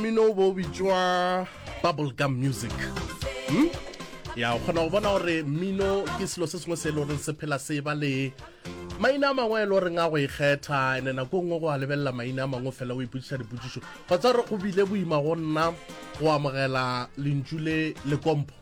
mmino o bo bitšwa bubble gum music hmm? ya o kgona go bona gore mmino ke selo se sengwe se e le goreng se phela se ba le maina a mangwe e le goreng a go ikgetha ene nako e nngwe go a lebelela maina a mangwe fela o ipotsiša dipotsišo kgotsa gore go bile boima go nna go amogela lentšu le lekompo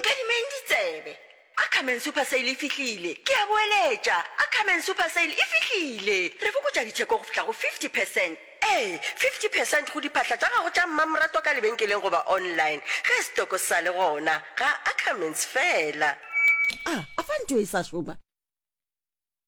Nkadimeng ditsebe. Ackerman Super Sale e fihlile! Ke a boeletša, Ackerman Super Sale e fihlile! Re fokotša ditheko go fihla go 50 percent. Ee, 50 percent go diphahla tša gago tša mmamoratwa ka lebenkeleng goba online, ge setoko sa le gona. Ga Ackermans feela. A, a fa ntho e sa šoma?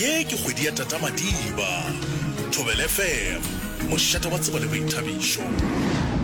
Ye ke kgwedi ya Tata Madiba. Thobelfm, mošate wa tsebo le boithabišo.